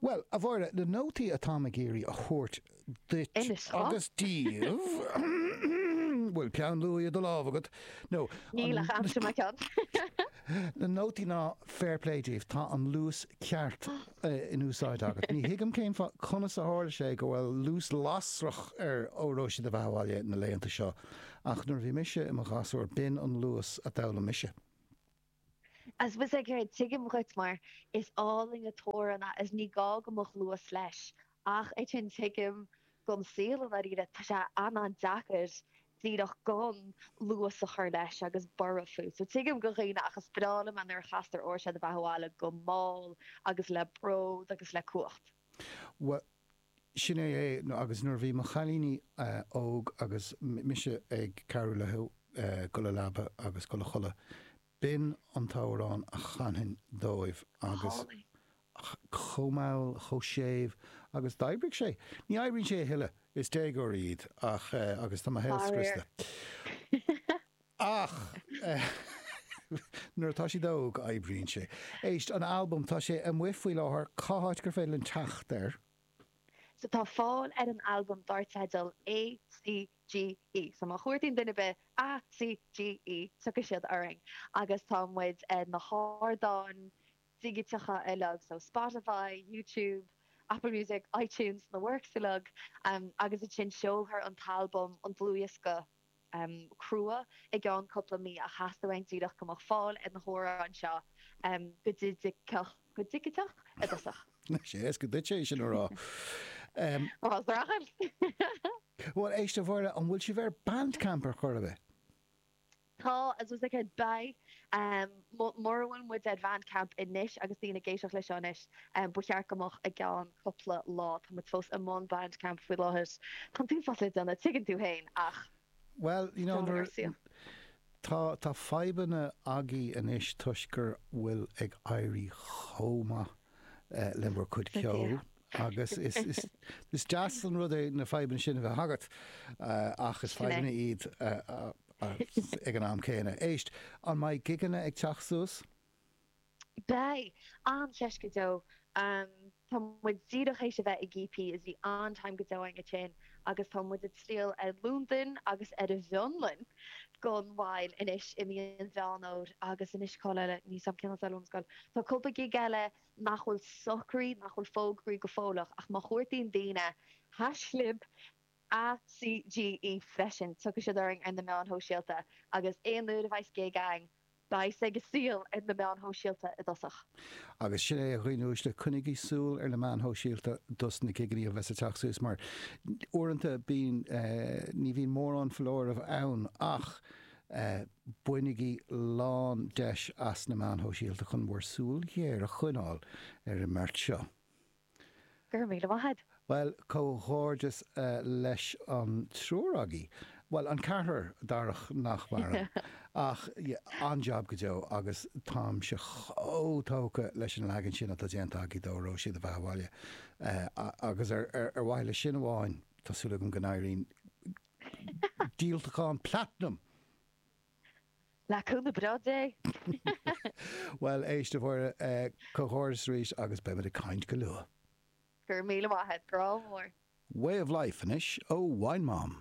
Bhuel, a Mháire, na nótaí atáim ag iarraidh a thabhairt duit agus daoibh, bhfuil peann luaidhe i do lámh agat nó. Níl ach am sa mo cheann. Na nótaí ná fair play daoibh, tá an luas ceart in úsáid agat. Ní thuigim cén fáth, conas a tharla sé go bhfuil luas lasrach ar Óró Sé do Bheatha Abhaile na laethanta seo, ach nuair a bhí mise i mo ghasúr, b'in an luas a d'fhoghlaim mise. I suppose, tuigim dhuit mar is álainn an t-amhrán é is ní gá go mbeadh luas leis ach ansin tuigim don saol i ndáiríre tá sé an an deacair díreach gan luas a chur leis agus borradh fút so tuigim do dhaoine ach is breá liom é nuair a chastar Óró Sé do Bheatha Abhaile go mall agus le bród agus le cumhacht. Sin é é, agus nuair a bhí mo chailíní óg agus mise ag cabhrú leo dul a leaba agus dul a chodladh, b'in an t-amhrán a chanfainn dóibh agus chomh mall, chomh séimh agus d'oibrigh sé. Ní oibríonn sé a thuilleadh, is déagóirí iad ach, agus tá mo shaol scriosta. Ach nuair atá siad óg, oibríonn sé. Éist, an albam, tá sé amuigh faoi láthair. Cá háit gur féidir linn teacht air? So tá fáil ar an albam dar teideal ACGE. So má chuartaíonn duine ar bith ACGE, tiocfaidh siad orainn. Agus tá muid ar na hardáin dhigiteacha uilig, so Spotify, YouTube, Apple Music, iTunes, na works uilig. Agus ansin seolfar an t-albam, an dlúthdhiosca, crua i gceann cúpla mí ach theastaigh uainn díreach go mbeadh fáil ar na hamhráin seo go digiteach i dtosach. Is éasca duitse é sin a rá. Bhuel, braitheann. Bhuel, éist a Mháire, an bhfuil sibh ar Bandcamp ar chor ar bith? Tá, I suppose like beidh. Mura bhfuil muid ar Bhandcamp anois, agus daoine ag éisteacht leis seo anois, ba cheart go mbeadh i gceann cupla lá. Tá muid fós i mbun Bandcamp faoi láthair. Tá'n t-uafás le déanamh, tuigeann tú féin, ach Well, you know, nuair, tá, tá fadhbanna agaibh anois toisc go bhfuil ag éirí chomh maith le bhur gcuid ceoil agus is, is, is deas an rud é na fadhbanna sin a bheith agat ach is fadhbanna iad ag an am céanna. Éist, an mbeidh gigeanna ag teacht suas? Beidh an-cheist go deo. Tá muid díreach tar éis a bheith ag EP is bhí an-time go deo againn ansin agus tá muid ag triall ar Londain agus ar an bhFionlainn gan mhoill anois i mí an Mheán Fómhair agus anois cáil eile, níl a fhios agam cén áit eile ón scoil. Tá cúpla gig eile nach bhfuil socraithe, nach bhfuil fógraithe go fóilleach ach má chuartaíonn daoine haischlib ACGE freisin tiocfaidh siad orainn ar na meáin shóisialta agus aon uair a bheidh gig ann beidh sé go léir ar na meáin shóisialta i dtosach. Agus sin é a dhaoine uaisle, coinnigí súil ar na meáin shóisialta dos na gigeannaí a bheidh ag teacht suas mar uaireanta bíonn, ní bhíonn mórán foláireamh ann ach bainigí lán deis as na meáin shóisialta chun bhur súil ghéar a choinneáil ar an mbeart seo. Go raibh míle maith a'd. Bhuel, comhghairdeas leis an triúr agaibh, bhuel, an ceathrar, Darach nach maireann, ach an-jab go deo agus táimse chomh tógtha leis an leagan sin atá déanta agaibh d'Óró Sé do Bheatha 'Bhaile, agus ar mhaithe leis sin amháin, tá súil agam go n-éiríonn díolachán platanam! Le cúnamh Dé. Bhuel, éist, a Mháire, comhghairdeas arís agus beimid ag caint go luath. Go raibh míle maith a't, grá mór. Way of life, anois, ó Wine Mom.